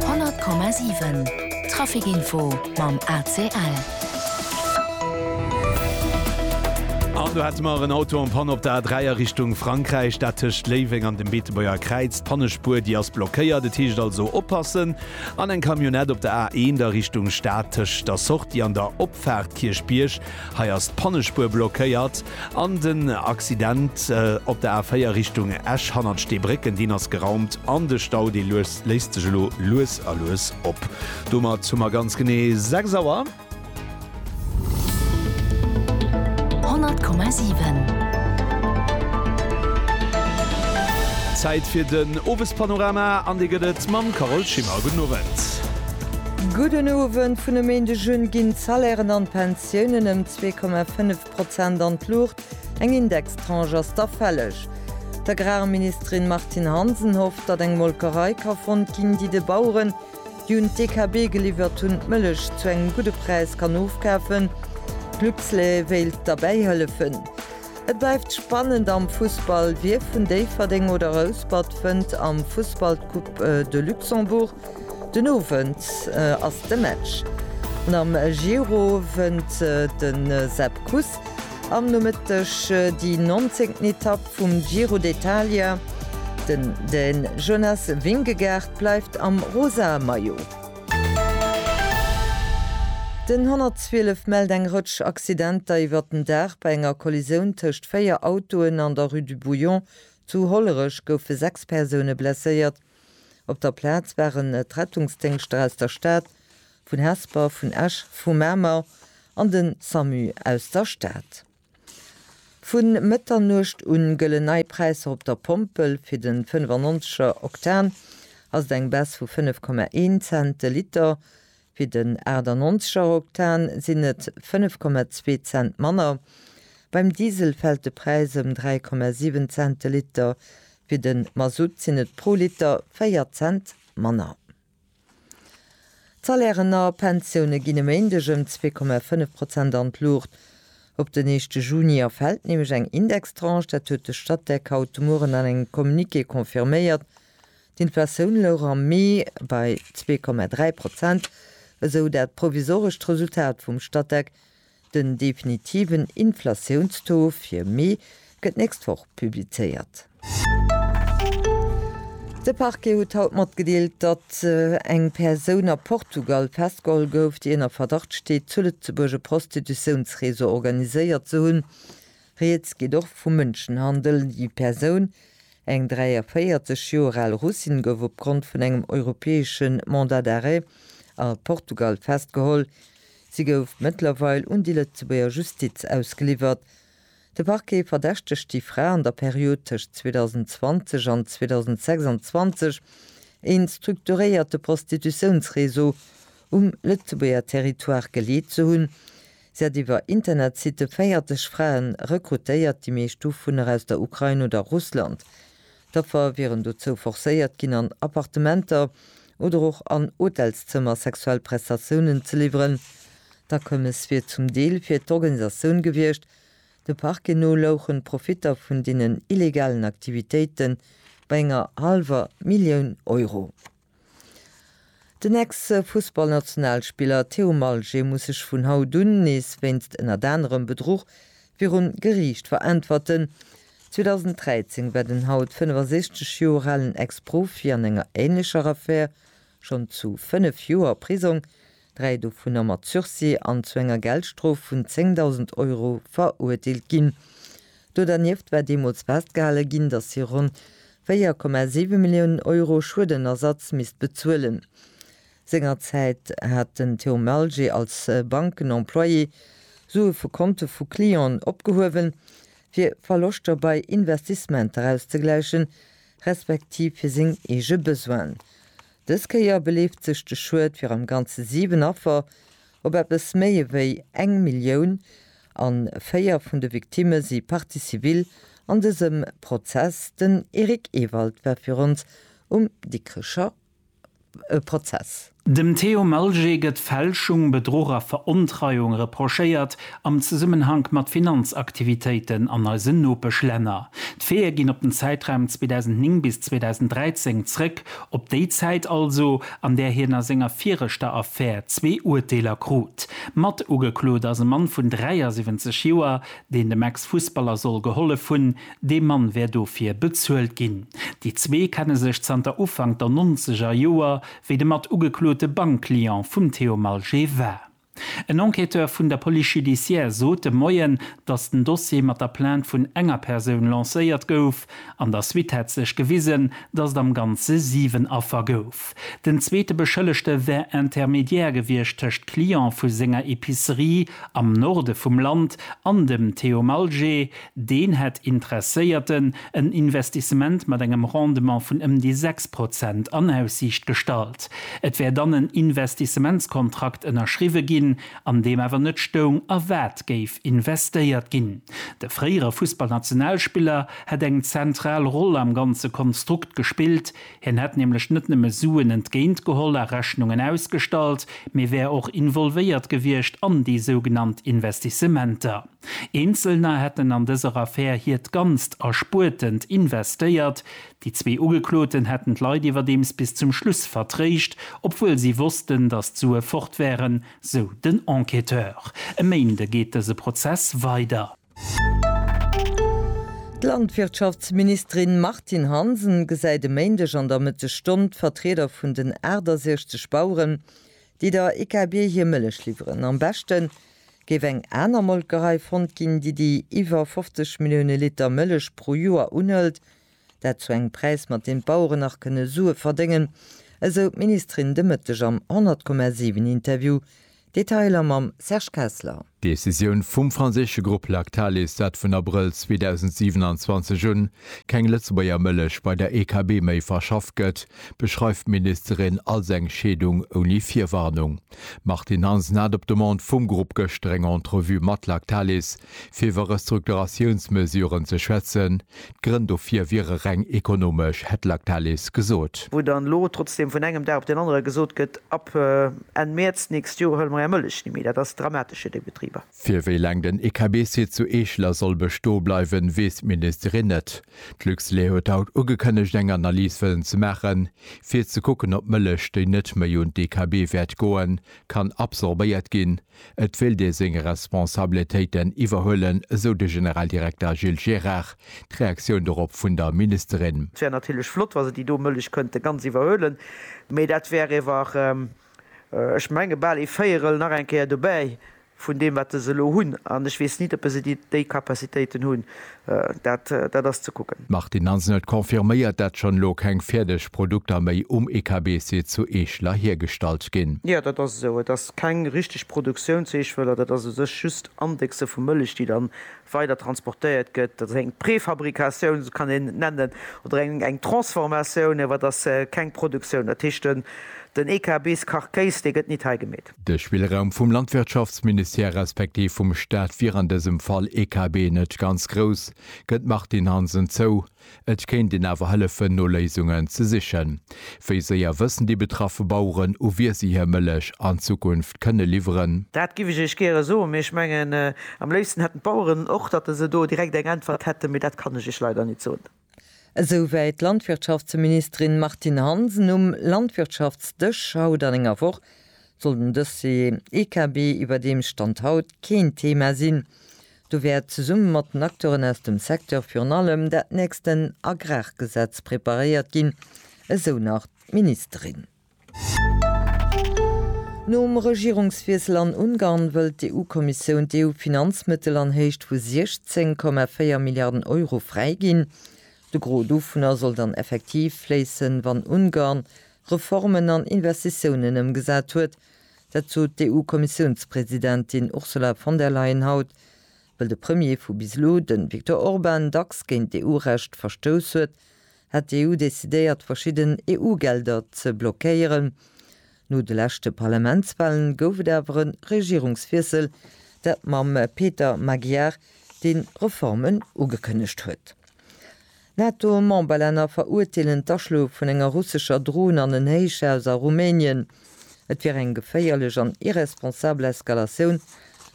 100,7 Traficinfo mam ACL. An do hätte mer en Auto en Panne op der A3 a Richtung Frankräich, dat tëscht Léiweng an dem Beetebuerger Kräiz. D'Pannespuer, déi ass blockéiert, et heescht also oppassen. An eng Camionnette op der A1 a Richtung Stad tëscht der Sortie an der Opfaart Kierchbierg. Hei ass d'Pannespuer blockéiert an den Accident op der A4 Richtung Esch hannert Steebrécken, deen ass geraumt an de Stau, dee léist sech elo lues a lues op. Domat hu mer ganz genee 6 Auer. 100,7. Zäit fir den Owespanorama an dee gëtt et mam Carole Schimmer. Gudden Owend. Gudden Owend, Vun e Méindeg un ginn d'Salairen an d'Pensiounen ëm 2,5 Prozent an d'Luucht, eng Indextranche ass da fälleg. D'Agrarministerin Martine Hansen hofft, datt eng Molkerei ka fonnt ginn, déi de Baueren, déi un d'DKB geliwwert hunn, d'Mëllech zu engem gudde Präis kann ofkafen. D'Luxlait wéilt derbäi hëllefen. Et bleift spannend am Fussball, Wie vun Déifferdeng oder Rouspert fënnt am Fussball d'Coupe de Luxembourg? Den Owend ass de Match. Am Giro wënnt de Sepp Kuss am Nomëtteg déi nonzéngten Etapp vum Giro d'Italia. Den Dän Jonas Vingegaard bleift am rosa Maillot. Den 112 mellt eng Rëtsch Accidenter iwwert den Dag. Bei enger Kollisioun tëscht véier Autoen an der Rue du Bouillon zu Hollerech goufe sechs Persoune blesséiert. Op der Plaz waren d'Rettungsdéngschter aus der Stad, vun Hesper, vun Esch, vu Mamer an de Samu aus der Stad. Vu Mëtternuecht u gëllen nei Präisser op der Pompel. Fir de 95 er Oktan ass et eng Baisse vu 5,1 Cent de Liter. Fir den 98 er Oktan sinn et 5,2 Cent manner. Beim Diesel fält de Präis ëm 3,7 Cent de Liter. Fir de Masutt sinn et pro Liter 4 Cent manner. D'Salairen a Pensioune ginn e Méindeg ëm 2,5 Prozent an d'Luucht. Op den éischte Juni erfält nämlech eng Indextranche. Dat huet de Statec haut de Mueren an engem Communiqué confirméiert. D'Inflatioun louch am Mee bei zwee Komma dräi Prozent, esou dat provisorescht Resultat vum Statec. Den definitiven Inflatiounstaux fir Mee gëtt d'nächst Woch publizéiert. De Parquet huet haut matgedeelt, datt eng Persoun a Portugal festgeholl gouf, déi ënner Verdacht steet, zu Lëtzebuerg e Prostitutiounsreseau organiséiert ze hunn. Rieds geet och vu Mënschenhandel. Déi Persoun, eng 43 Joer al Russin, gouf opgrond vun engem europäesche Mandat d'arrêt a Portugal festgeholl. Si gouf mëttlerweil un déi Lëtzebuerger Justiz ausgeliwwert. De Parquet verdächtegt déi Fra an der Period tëscht 2020 an 2026 ee strukturéierte Prostitutiounsreseau um Lëtzebuerger Territoire geleet ze hunn, Si hat iwwer Internetsitte 40 Fraen rekrutéiert, déi meescht dovunner aus der Ukrain oder Russland. D'Affer wieren dozou forcéiert ginn, an Appartementer oder och an Hotelszëmmer sexuell Prestatiounen ze liwweren. D'Akommes wier zum Deel fir d'Organisatioun gewiescht. De Parquet no louchen d'Profitter vun deenen illegalen Aktivitéite bei enger hallwer Millioun Euro. Den Ex-Fussballnationalspiller Théo Malget muss sech vun haut un nees wéinst ënnert anerem Bedruch virum Geriicht veräntwerten. 2013 war den haut 65 Joer alen Ex-Profi an enger änlecher Affär schonn zu fënnef Joer Prisong dräi dovunner mat Sursis an zu enger Geldstrof vun 10.000 Euro verurteelt ginn. Do dernieft war deemools festgehale ginn, datt si ronn 4,7 Milliounen Euro Schuedenersatz misst bezuelen. Sengerzäit hat den Théo Malger als Bankenemployé Sue vu Konte vu Clienten opgehuewen, fir Verloschter bei Investissementer auszegläichen, respektiv fir seng eege Besoinen. Dës Kéier beleeft sech de Schued fir am Ganze 7 Affer op eppes méi ewéi eng Millioun an 4 vun de Victimme si Partie civile an dësem Prozess. Den Eric Ewald war fir ons um Dikrecher Prozess. Dem Theo Malger gëtt Fälschung, Bedruch a Verontreiung reprochéiert am Zesummenhank mat Finanzaktivitéiten an eisen Nopeschlänner. D'Feeë ginn op den Zäitraum 2009 bis 2013 zrëck, op déi Zäit also, an där hien a senger viregter Affär zwee Urteeler krut. Mat ugeklot ass e Mann vun 73 Joer, deen dem Ex-Fussballer soll gehollef hunn. Dee Mann wär dofir bezuelt ginn. Déi zwee kenne sech zanter Ufank der Nonzeger Joer, wéi de mat ugeklote Bankclient vum Theo Malger war. En Enquêteur vun der Police judiciaire sot de Moien, datt den Dossier mat der Plainte vun enger Persoun lancéiert gouf. An der Suite hätt sech gewisen, datt et am Ganze 7 Affer gouf. Den zweete Beschëllegte wär Intermédiaire gewiescht tëscht Client vu senger Epicerie am Norde vum Land an dem Theo Malger, Deen hätt Interesséierten en Investissement mat engem Rendement vun ëm déi 6 Prozent an Aussiicht gestallt. Et wär dann en Investissementskontrakt ënnerschriwwe ginn, an deem awer net stoung, a wat géif investéiert ginn. De fréiere Fussballnationalspiller hätt eng zentral Roll am ganze Konstrukt gespillt. Hien hätt nämlech net nëmme Suen entgéint geholl a Rechnungen ausgestallt, mee wär och involvéiert gewiescht an déi sougenannt Investissementer. Eenzelner hätten an dëser Affär hiert ganzt Erspuertent investéiert. Déi zwee Ugekloten hätten d'Leit iwwerdeems bis zum Schluss vertréischt, obwuel si wossten, datt d'Sue fort wären, sou den Enquêteur. E Méinde geet dëse Prozess weider. D'Landwirtschaftsministerin Martine Hansen gesäit e Méindeg an der Mëttesstonn d'Vertrieder vun den 68 Baueren, déi der IKB hir Mëllech liwweren. Am beschten Géif eng aner Molkerei fonnt ginn, déi déi iwwer 50 Millioune Liter Mëllech pro Joer unhëlt, dat zu engem Präis, mat deem d'Baueren nach kënne Sue verdéngen, esou d'Ministerin de Mëtteg am 100, 7 Interview. Detailer mam Serge Kessler. D'Decisioun vum franséische Grupp Lactalis, dat vun Abrëll 2027 un keng Lëtzebuerger Mëllech bei der EKB méi verschafft gëtt, beschreift d'Ministerin als eng Scheedung ouni Virwarnung. D'Martine Hansen hat op Demande vum Grupp gëschter eng Entrevue mat Lactalis, fir iwwer Restrukturatiounsmesuren ze schwätzen. D'Grënn dofir wiere reng ekonomesch, hätt Lactalis gesot. Wou dann elo trotzdeem vun engem Dag op deen anere gesot gëtt, ab Enn Mäerz d'nächst Joer huele mer är Mëllech ni méi, dat ass dramatesch fir déi Betriber. Fir wéi laang den EKB-Site zu Eeschler soll bestoe bleiwen, weess d'Ministerin net. D'Luxlait huet haut ugekënnegt eng Analys wëllen ze maachen, fir ze kucken op Mëllech, déi net méi un d'EKB wäert goen, kann absorbéiert ginn. Et wéilt ee seng Responsabletéiten iwwerhuelen, esou de Generaldirekter Gilles Gérard. D'Reaktioun dorop vun der Ministerin. Et wär natierlech flott, wa se déi do Mëllech kënnte ganz iwwerhuelen, mee dat wär iwwer. Ech menge bal ee Véierel nach eng Kéier dobäi vun deem, wat se elo hunn. An ech weess nit, oppe se déi Capacitéiten hunn. Dat, dat ass ze kucken. D'Martine Hansen huet confirméiert, dat schonn elo keng fäerdeg Produkter méi um EKB-Site zu Eeschler hiergestallt ginn. Jo, dat ass esou. Et ass keng richteg Produktioun zu Eeschwëller. Dat ass u sech just Indexe vu Mëllech, déi dann weider transportéiert gëtt, dat ass eng Préfabricatioun, esou kann een et nennen, oder eng Transformatioun, awer et ass keng Produktioun. Dat heescht, den EKBs Karkéis, dee gëtt nit hei gemeet. De Spillraum vum Landwirtschaftsministère respektiv vum Staat wier an dësem Fall, EKB, net ganz grouss, gëtt d'Martine Hansen zou. Et kéint een awer hëllefen no Léisungen ze sichen. Wéi séier wëssen déi betraffe Baueren, u wie si hir Mëllech an Zukunft kënne liwweren? Dat giff ech Iech gäre soen, mee ech mengen, am léifsten hätten d'Baueren och, datt se do direkt eng Äntwert hätten, mee dat kann ech Iech leider net soen. Esou wéi d'Landwirtschaftsministerin Martine Hansen um Landwirtschaftsdësch haut an enger Woch, soll den Dossier EKB iwwer deem Stand haut keen Thema sinn. Do wäert zesumme mat den Acteuren aus dem Secteur virun allem dat nächsten Agrargesetz preparéiert ginn, esou nach d'Ministerin. Nom Regierungswiessel an Ungarn wëllt d'EU-Kommissioun d'EU-Finanzmëttel an Héicht vu 16,4 Milliarden Euro fräiginn. De Gros dovunner soll dann effektiv fléissen, wann Ungarn Reformen an Investitiounen ëmgesat huet, Dat sot d'EU-Kommissiounspresidentin Ursula von der Leyen haut, wëll de Premier vu bis elo, de Viktor Orban, dacks géint d'EU-Recht verstouss huet, hätt d'EU decidéiert, verschidden EU-Gelder ze blockéieren. No de leschte Parlamentswahlen gouf et awer e Regierungswiessel, dat mam Peter Magyar, dee Reformen ugekënnegt huet. NATO-Memberlänner verurteelen d'Aschloe vun enger russescher Dron an en Héichhaus a Rumänien. Et wier eng geféierlech an irresponsabel Eskalatioun,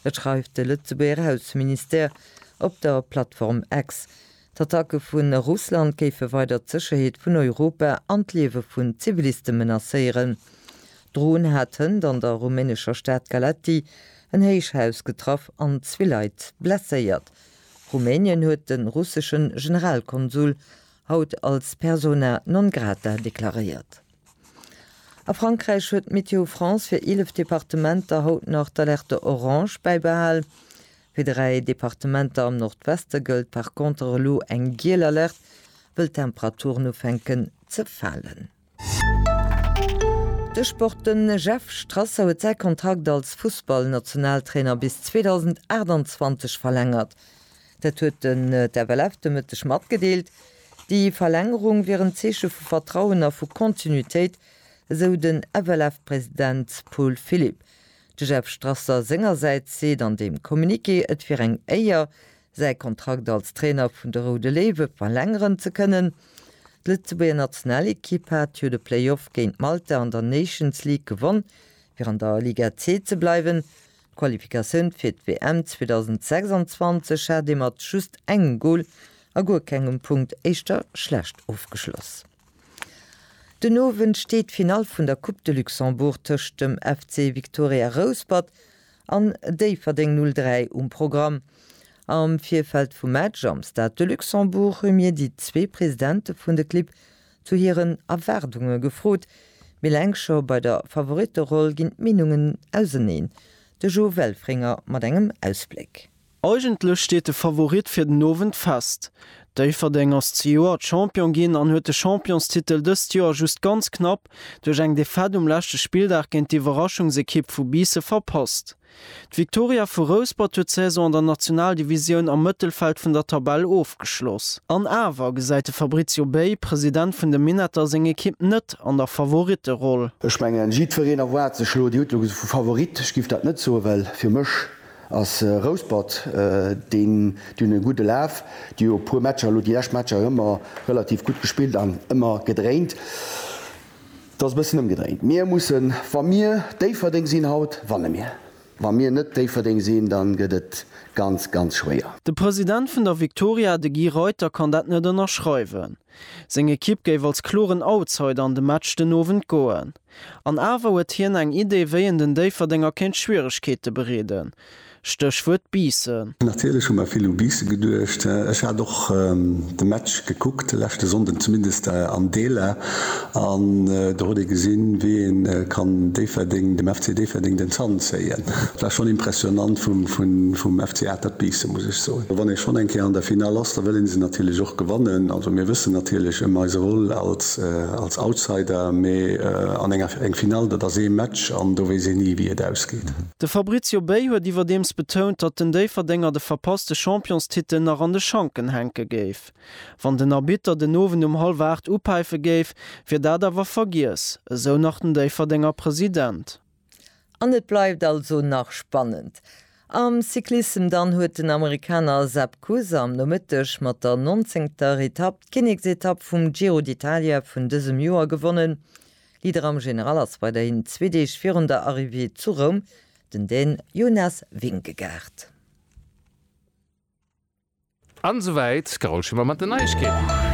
dat schreift de Lëtzebuerger Ausseministère op der Plattform X. D'Attacke vu Russland géife weider d'Sécherheet vun Europa an d'Liewe vun Ziviliste menacéieren. D'Dron hat hënt an der rumänescher Stad Galaţi en Héichhaus getraff an zwee Leit blesséiert. Rumänien huet de russesche Generalkonsul haut als persona non grata deklaréiert. A Frankräich huet Météo France fir 11 Departementer haut nach d'Alerte orange bäibehal. Fir dräi Departementer am Nordweste gëllt par conter elo eng giel Alerte, wëll d'Temperaturen ufänken ze falen. De Sport, Den Jeff Strasser huet säi Kontrakt als Fussballnationaltrainer bis 2028 verlängert. Dat huet den FLF de Mëtteg matgedeelt. Déi Verlängerung wier en Zeeche vu Vertrauen a vu Kontinuitéit, esou den FLF-President Paul Philipp. De Jeff Strasser sengersäits seet an deem Communiqué, et wier eng Éier, säi Kontrakt als Trainer vun de Roude Léiwe verlängeren ze kënnen. D'Lëtzebuerger Nationalekipp hat jo de Playoff géint Malta an der Nations League gewonn, fir an der Liga C ze bleiwen. D'Qualifikatioun fir d'WM 2026 hat ee mat just engem Gol a guer kengem Punkt éischter schlecht ofgeschloss. Den Owend steet d'Finall vun der Coupe de Luxembourg tëscht dem FC Victoria Rouspert an Déifferdeng 03 um Programm. Am Virfeld vum Match am Stade de Luxembourg hu mir déi zwee Presidente vun de Clibb zu hiren Erwaardunge gefrot. Mee eleng scho bei der Favoritteroll ginn d'Meenungen auseneen. De Jo Welfringer mat engem Ausbléck. Eigentlech steet de Favorit fir den Owend fest. Déifferdeng ass zejoert Champion ginn an huet de Championstitel dëst Joer just ganz knapp duerch eng Defaite um leschte Spilldag géint d'Iwwerraschungsekipp vu Biisse verpasst. D'Viktoria vu Rouspert huet d'Saison an der Nationaldivisioun am Mëttelfeld vun der Tabell ofgeschloss. An awer gesäit de Fabrizio Bey, President vun de Minetter, seng Ekipp net an der Favoritteroll. Ech mengen, jiddwereen erwaart sech elo, Dir hutt elo vu Favorit, ech giff dat net soen, well fir mech Ass Rouspert deen dunn e gudde Laf? Déi hu e puer Matcher elo, déi lescht Matcher ëmmer relativ gutt gespillt an ëmmer gedréint. Et ass e bëssen ëmgedréint. Mir mussen, wa mir Déifferdeng sinn haut, wanne mir. Wa mir net Déifferdeng sinn, da gëtt et ganz, ganz schwéier. De President vun der Viktoria, de Guy Reuter, kann dat net ënnerschreiwen. Seng Ekipp géif als kloren Outsider an de Match den Owend goen. An awer huet hien eng Idee, wéi een den Déifferdenger kéint Schwieregkeete bereeden, Stéchwuert Biissen. Natierlech hu mer vill u Biissen geduecht. Ech hat och de Match gekuckt de leschte Sonnden, zumindest an Deeler. An do huet ee gesinn, wéi een kann Déifferdeng, dem FC Déifferdeng den Zant zéien. Et war schonn impressionant vum FC Atert Biissen, muss ech soen. Wann ee schonn eng Kéier an der Finale ass, da wëll ee se natierlech och gewannen. Also mir wëssen natierlech ëm eise Rôle als Outsider, mee an enger eng Finale, dat ass ee Match an do weess een ni, wéi et ausgeet. De Fabrizio Bey huet iwwerdeems betount, datt den Déifferdenger de verpasste Championstitel nach an de Schanken hänke géif. Wann den Arbitter den Owend um hallwer 8 upäife géif, wier dat awer vergiess, esou nach den Déifferdenger President. An et bleift also nach spannend. Am Cyclissem dann huet den Amerikaner Sepp Kuss am Nomëtteg mat der nonzéngter Etapp d'Kinneksetapp vum Giro d'Italia vun dësem Joer gewonnen. Leader am General ass weiderhin zwee Deeg virun der Arrivée zu Roum den Dän Jonas Vingegaard. An esou wäit d'Carole Schimmer mat den Neiegkeeten.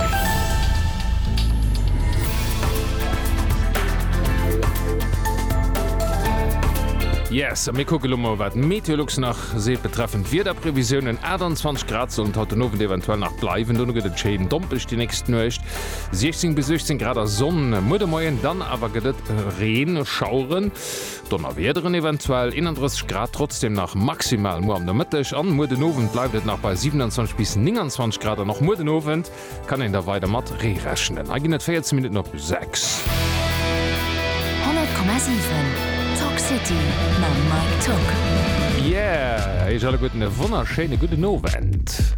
Yes, a mir kucke lo mol wat d'Meteolux nach seet betreffend d'Wiederprevisiounen. 28 Grad sollen et haut den Owend eventuell nach bleiwen, dono gëtt et schéin dompeg déi nächst Nuecht. 16 bis 18 Grad a Sonn muer de Moien, dann awer gëtt et Reen, Schaueren. Donnerwiederen eventuell, 31 Grad trotzdem nach maximal muer am Nomëtteg an muer den Owend bleift et nach bei 27 bis 29 Grad an och muer den Owend kann een da weider mat Ree rechnen. Hei ginn et 14 Minutten op 6. 100,7 Talk City mam Mike Togg. Yeah, eech alleguerten e wonnerschéine gudden Owend.